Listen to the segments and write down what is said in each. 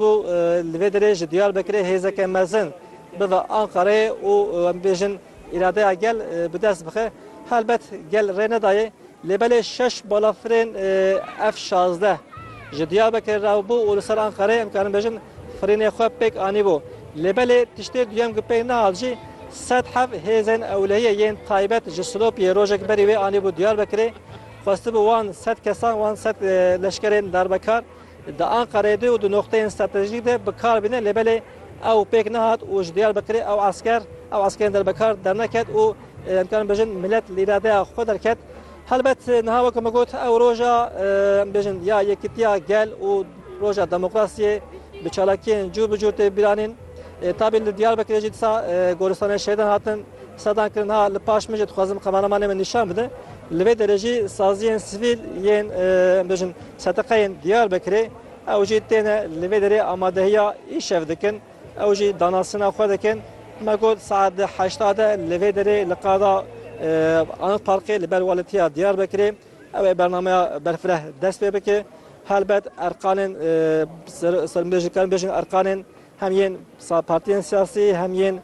Ku li vê derê ji Diyarbekirê hêzeke mezin bibe Anqareyê û em bibêjin îradeya gel bi dest bixe. Helbet gel rê nedaye lê belê şeş balafirên F şazdeh ji Diyarbekirê re bû û li ser Anqareyê em karin bêjin firînê xwe pêk anîbû. Lê belê tiştê duyem ku pêk nehat jî sed hev hêzên ewlehiyê yên taybet ji Silopiyê rojek berî wê anîbû Diyarbekirê. Xwestibû wan sed kesan wan sed leşkerên darbekar. Di Anqereyê de û di noqteyên stratejîk de bi kar bîne lê belê ew pêk nehat û ji Diyarbekirê ew esker ew eskerên derbekar derneket û em dikarin bêjin milet li îradeya xwe derket. Helbet niha weke min got ew roja em bêjin ya yekitiya gel û roja demokrasiyê bi çalakiyên cûr bi cûr tê bîranîn. Tabî li Diyarbekirê jî disa goristanên şehîdan hatin sedan kirin ha li paş min jî dixwazim kameramanê min nîşan bide. Li vê derejî saziyên sivîl yên bêjin seteqeyên Diyarbekirê ew jî têne li vê derê amadehiya îşev dikin, ew jî danasina xwe dikin. Me got saet di heşta de li vê derê li qada Anıt Parkê li ber Walîtiya Diyarbekirê ew ê bernameya berfireh dest pê bike. Helbet erqanên serbêjin karin bêjin erqanên hem yên partiyên siyasî hem yên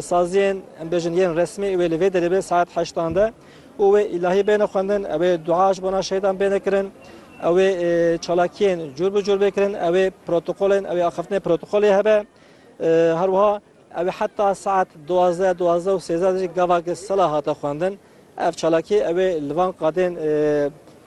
Saziyên em bêjin yên resmî wê li vê derê bê saet heştan de û wê îlahî bêne xwendin, ewê dua ji bona şehîdan bêne kirin, ewê çalakiyên cûr bi cûr bê kirin, ewê protokolên ewê axiftinê protokolê hebe. Her wiha ewê heta saet duwazdeh, duwazdeh û sêzdeh de jî gavake sela hate xwendin. Ev çalakî ew ê li van qadên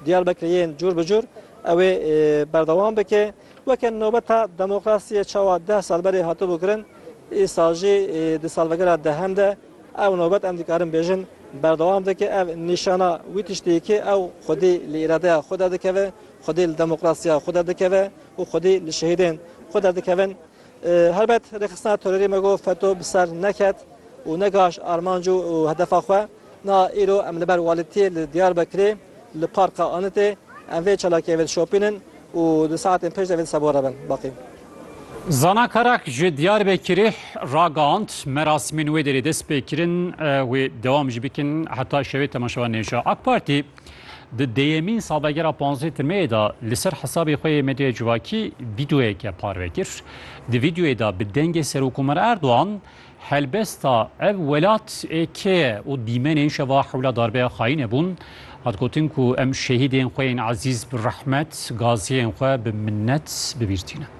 Diyarbekirê yên cûr bi cûr ew ê berdewam bike. Weke nobeta demokrasiyê çawa deh sal berê hatibû kirin, îsal jî di salvegera dehem de ew nobet em dikarin bêjin berdewam dike. Ev nîşana wî tiştî ye ku ew xwedî li îradeya xwe derdikeve, xwedî li demokrasiya xwe derdikeve û xwedî li şehîdên xwe derdikevin. Helbet rêxistina terorê me got FETÖ bi ser neket û negihişt armanc û hedefa xwe. Niha îro em li ber Welîtiyê li Diyarbekirê li Parka Anitê em vê çalakiyê vê dişopînin û di saetên pêş de vê disa bo re bin baqî. Zana Karak ji Diyarbekirê ragihand, Merasimên wê derê dest pê kirin, wê dewam jî bikin heta şevê temaşevan nêşa. Ak Partî Di dêyemîn salvegera panzdeh Tirmeyê de li ser hesabê xwe yê medyaya civakî vîdeoyeke parve kir. Di vîdeoyê de bi dengê Serokkomarê Erdogan helbesta ev welat ê kê ye û dîmenên şeva hewla darbeya xayîne bûn. Hat gotin ku em şehîdên xwe yên ezîz bi rehmet, gaziyên xwe bi minnet bibîrtînin.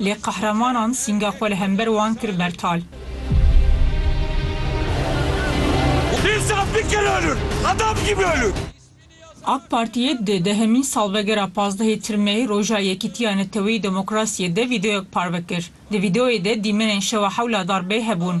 lê qehremanan sînga xwe li hember wan kir bertal. AK Partiyê di dehemîn salvegera pazdehê Tirmeyê Roja Yekîtiya Neteweyî Demokrasiyê de vîdeoyek parve kir. Di vîdeoyê de dîmenên şewa hewla darbeyê hebûn.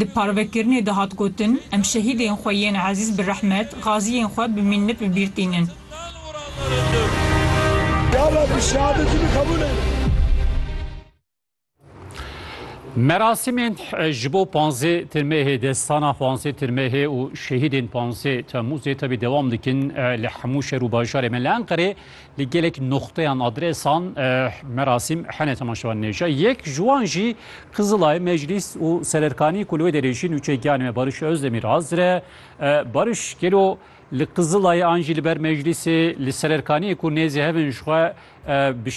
Di parvekirinê de hat gotin, Em şehîdên xwe yên ezîz bi rehmet, gaziyên xwe bi mînnet bi bîr tînin. Merasimên ji bo panzdeh Tirmehê, destana panzdeh Tirmehê û şehîdên panzdeh Temmûzê tevî dewam dikin li hemû şer û bajarê me. Li Enqerê Li gelek noxteyan adresan merasîm hene temaşevan nêşa. Yek ji wan jî Qizilay, Meclîs û Sererkanî ku li wê derê jî nûçe giyanê me Bariş Özdemir azire. Bariş gelo li Qizilayê an jî li ber Meclîsê li Sererkaniyê ku nêzî hev in ji xwe